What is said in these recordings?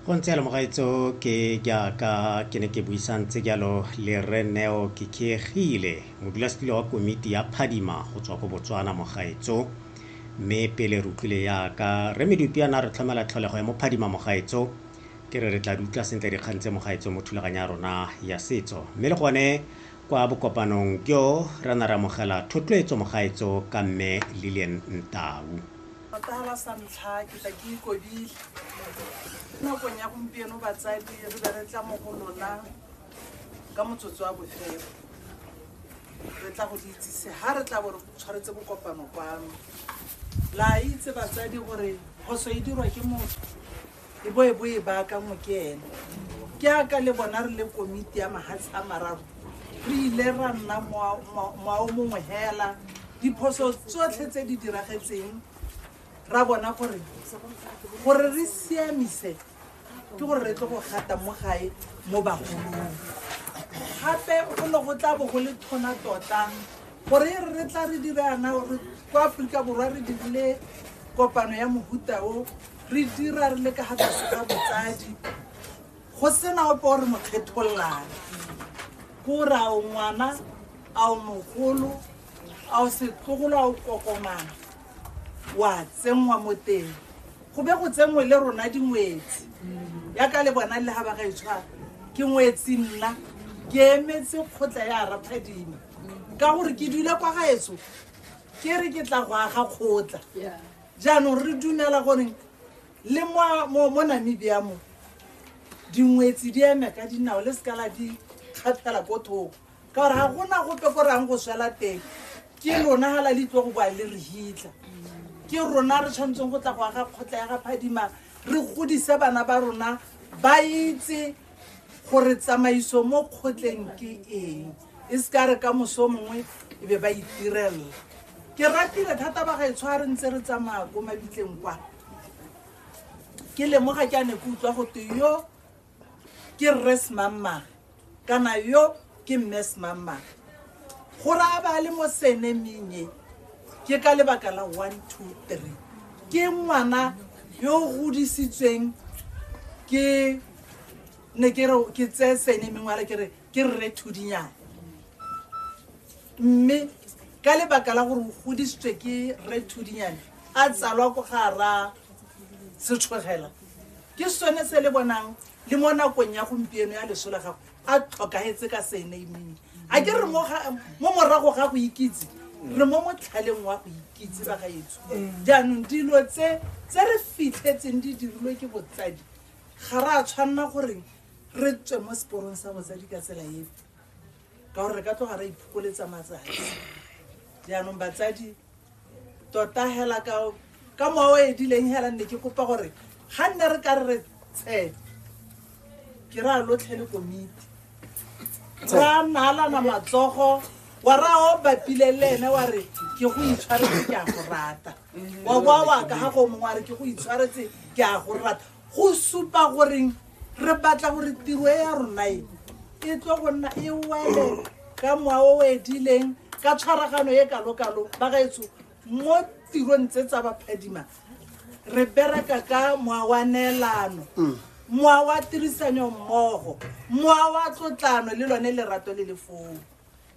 go ntse yalo mogaetso ke jaaka ke ne ke buisang tse jalo le re neo ke khiegile modulasetilo wa komiti ya phadima go tswa ko botswana mogaetso mme pele re utlwile yaka re medupi yana re tlhomela tlholego ya mophadima mogaetso ke re re tla di utlwa sentle dikgang tse mogaetso mo thulaganyo ya rona ya setso mme le gone kwa bokopanong jo re na re amogela thotloetso mogaetso ka mme lilian ntau Patala sa ntlha ke tla ke ikobile nakong ya gompieno batsadi re be re tla mo go lona ka motsotso wa bofelo re tla go le itsise ga re tla bo re tshwaretse bokopano kwano la itse batsadi gore phoso e dirwa ke motho e bo e bo e baakangwe ke ene ke aka le bona re le komiti ya mahatshe a mararo re ile ra nna moao mongwe hela diphoso tsotlhe tse di diragetseng ra bona gore gore re siamise ke gore re tle go gata mo gae mo bagolong gape go ne go tla bo go le thona tota gore e re re tla re dirana gore ko aforika borwa re dirile kopano ya mohuta o re dira re le ka ga tsoso tsa botsadi go sena ope o re mo kgethollang ko o ra o ngwana a o mogolo a o setlogolo a o kokomana wa tsenngwa mo teng go be go tsenngwe le rona dingwetsi ya ka le bona le ga ba gaetshwa ke ngwetsi nna ke emetse kgotla ya raphadima ka gore ke dule kwa gaetso ke re ke tla go aga kgotla jaanong re dumela gore le mo namibia mo dingwetsi di eme ka dinao le seka la di kgathela ko thoko ka gore ga gona gope ko reyang go swela teng ke lona ga la le itlo go boa le re hitlha ke rona re tshwanetseng go tla go aga kgotla ya ga phadima re godise bana ba rona ba itse gore tsamaiso mo kgotleng ke eng e se ka re ka moso mongwe e be ba itirelela ke ratile thata ba gaetsho a re ntse re tsamaya ko mabitleng kwa ke lemoga ke a ne ke utlwa go te yo ke rres mammage kana yo ke mme semangmang go raya ba le mo senemeng e ke ka lebaka la one two three ke ngwana yo o godisitsweng ke ne ke re ke tseye senemeng wale ke re ke rre thudinyana mme ka lebaka la gore o godisitswe ke rre thudinyane a tsalwa ko ga ra setshogela ke sone se le bonang le mo nakong ya gompieno ya leso la gago a tlhokagetse ka senaming a ke re mo morago ga go ikitse re mo motlhaleng wa go ikitse ba gaetsho jaanong dilo tse tse re fitlhetseng di dirilwe ke botsadi ga re a tshwanela goreng re tswe mo seporong sa botsadi ka tsela efe ka gore re ka tloga re iphokoletsa matsatsi jaanong batsadi tota hela ka ka mowa o edileng hela nne ke kopa gore ga nne re ka re re tshe ke ra lotlhe le komiti ra naalana matsogo wa ra o bapile le ene wa re ke go itshwaretse ke a go rata wa boa wa ka ga go mongwe wa re ke go itshwaretse ke a go rata Go supa gore re batla gore tiro e ya rona e e tlo go nna e wele ka moa o o edileng ka tshwaragano e kalokalo ba gaetsho mo tirong tse tsa baphadima re bereka ka moa wa neelano moa wa tirisanyo mmogo moa wa tlotlano le lone lerato le le foo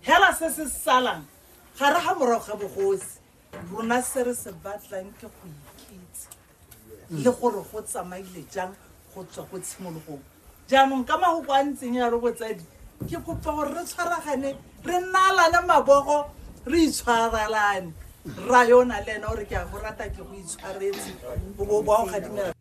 hela se se salang ga re ga morago ga bogosi rona se re se batlang ke go ikitse le gore go tsamaile jang go tswa go tshimologong jaanong ka magoko a ntseng ya re botsadi ke kopa gore re tshwaragane re nnalane mabogo re itshwaralane ra yona le ena gore ke a go rata ke go itshwaretse bo bo a go gadimela